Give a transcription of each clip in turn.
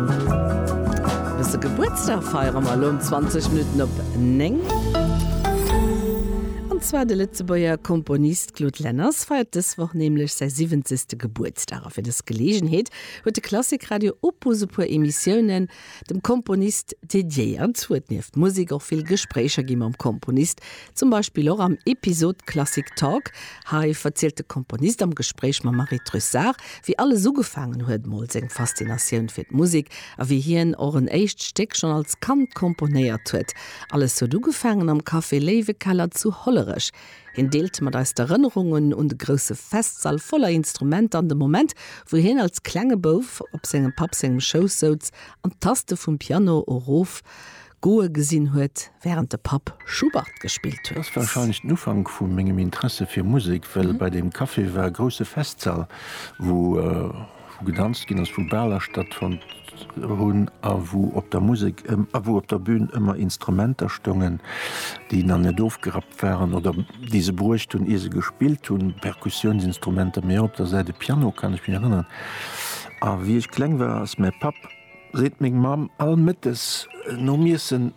Wësse Gebuertsdag feiere mer elo um 20 Minutten op 9. An zwar de Lëtzebuerger Komponist Claude Lenners feiert dës Woch nämlech säi siwwenzegste Gebuertsdag. A fir dës Geleegenheet huet de Klassikradio Opus e puer Emissiounen dem Komponist dediéiert. Huet nieft Musek och vill Gespréicher gi mam Komponist, Zum Beispill och am Episod Classic Talk. Hei verzielt de Komponist am Gespréich mam Marie Trussart, wéi alles ugefaangen huet, mol seng Faszinatioun fir d'Musek a wéi hien och en éischt Stéck schonn als Kand komponéiert huet. Alles huet ugefaangen am Café Léiwekeller zu Hollerech. Hien deelt mat eis d'Erënnerungen un de grousse Festsall voller Instrumenter an de Moment, wou hien als klenge Bouf op sengem Papp sengem Schouss souz an d'Taste vum Piano erof Goe gesinn huet, wärend de Papp Schubert gespillt huet. Ass wahrscheinlech den Ufank vu mengem Interesse fir Musek, well bei deem Café war e grousse Festsall, wou gedanzt ginn ass, wou Baler stattfonnt hunn a wou op der Musek, a wou op der Bühn ëmmer Instrumenter stongen, déi nach net ofgerappt waren oder déi se bruecht hunn, ier se gespillt hunn, Perkussiounsinstrumenter, mee och op der Säit e Piano, kann ech mech erënneren. A wéi ech kleng war, ass mäi Papp. Seet meng Mamm all Mëttes nom Iessen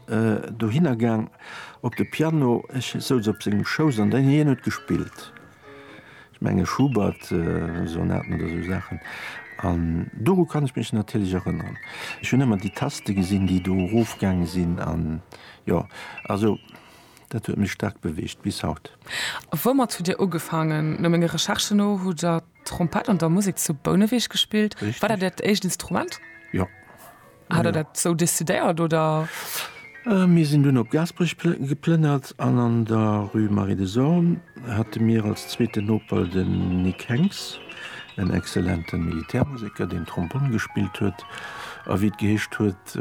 dohinner gaang op de Piano. Ech souz op sengem Schouss an hien huet gespillt. Ech menge Schubert Sonaten oder sou Saachen. An doru kann ech mech natierlech erënneren. Ech hunn ëmmer déi Taste gesinn, déi do erof gaange sinn. An jo, also dat huet mech staark beweegt bis haut. Woumat hutt Dir ugefaangen? No menge Recherchen no hutt Der Trompett an der Musek zu Bouneweg gespillt. Richtig. War dat dat éischt Instrument? Ja. Hat der dat sou decidéiert oder? Äh, mir sinn dunn op Gaasperech geplënnert an an der Rue Marie de Sorn hate mir als zweeten Noper den Nic Henx, en excellenten Militärmuseker, deen Trombonn gespillt huet a wéi et geheescht huet,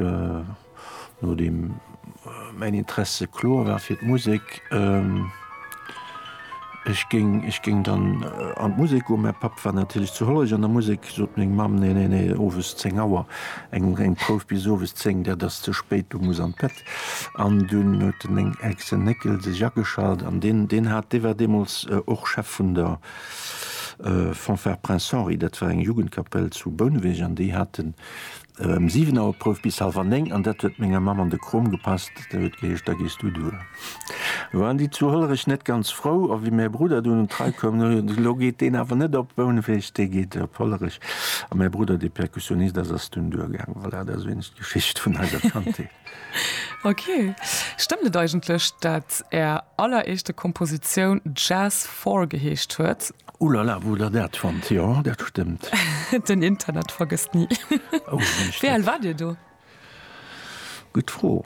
Nodeem mäin Interesse kloer war fir d'Musek, ech géing, ech géing dann an d'Musek goen, mäi Papp war natierlech zu Hollerich an der Musek, sot meng Mamm, Nee, nee, nee, owes 10 Auer, eng, eng Prouf bis owes 10, dat ass ze spéit, du muss an d'Bett. An dunn huet den Néng, Exen Néckel sech ageschalt an deen, deen hat, dee war deemools och Chef vun der Fanfare Prince Henri, dat war eng Jugendkapell zu Bouneweg an déi haten, Em 7 Auer Prouf bis halwer 9 an dat huet menger Mamm an de Krom gepasst. Da huet geheescht, da gees du duer. Lo waren déi zu Hollerech net ganz frou a wéi mäi Brudder dunn un d'Rei koum, no jo, lo geet deen awer net op Bouneweg, dee geet op Hollerech. A mäi Brudder, dee Perkussionist ass, ass dunn duer gaangen. Voilà, dat ass wéineg d'Geschicht vun eiser Kandheet. Ok, stëmmt et eigentlech dat är alleréischte Kompositioun Jazz Four geheescht huet? Ouh la la, wou der dat fannt? Jo, dat stëmmt. Den Internet vergësst ni. Wéi al war dir do? Gutt Fro.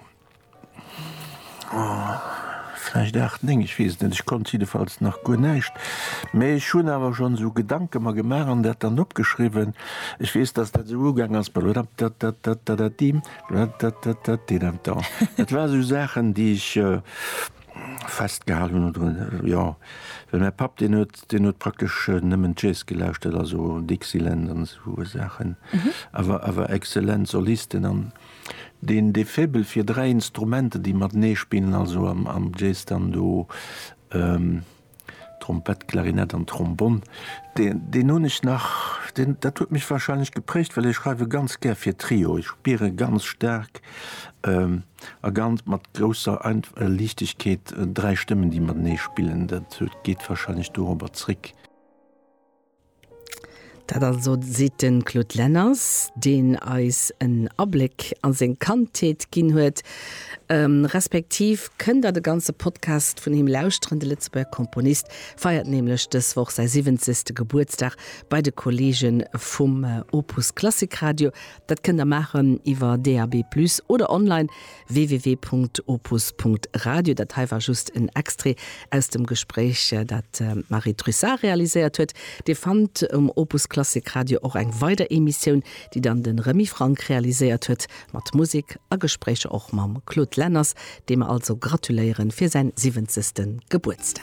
Vläicht aacht, néng, ech weess et net. Ech konnt jiddefalls nach guer näischt, mä ech hunn awer schonn esou Gedanke mer gemaach an dat dann opgeschriwwen. Ech weess, datt dat esou ugaang ass, balodapdatdatdadadadimm. Dat, dat, dat, dat deet em dann. Dat war sou Saachen, déi ech festgehal hunn oder jo. Well mäi Papp, deen huet, deen huet praktesch nëmmen Jazz gelauschtert, also Dixieland an sou Saachen. Awer, awer excellent Solisten an deen, dee Faible fir dräi Instrumenter, déi matenee spillen, also am, am Jazz dann do, Trompett, Klarinett an Trombonn, deen hunn ech nach, deen, dat huet mech wahrscheinlech geprägt, well ech schreiwe ganz gär fir Trio. Ech spiere ganz staark a ganz mat grousser Liichtegkeet dräi Stëmmen, déi matenee spillen. Dat geet wahrscheinlech dorobber zréck. Dat also seet de Claude Lenners, deen eis en Abléck a seng Kandheet ginn huet. Respektiv kënnt der de ganze Podcast vun him lauschteren. De Lëtzebuerger Komponist feiert nämlech dës Woch säi 70. Gebuertsdag bei de Kolleege vum Opus Klassik Radio. Dat kënnt der maachen iwwer DAB+ oder online www.opus.radio, Dat hei war just en Extrait aus dem Gespréich, dat d'Marie Trussart realiséiert huet. Dir fannt um Opus Klassik Radio och eng weider Emissioun, déi dann de Remy Franck realiséiert huet, mat Musek a Gespréicher och mam Claude Lenners, deem mer also gratuléieren fir säin siwwenzegsten Gebuertsdag.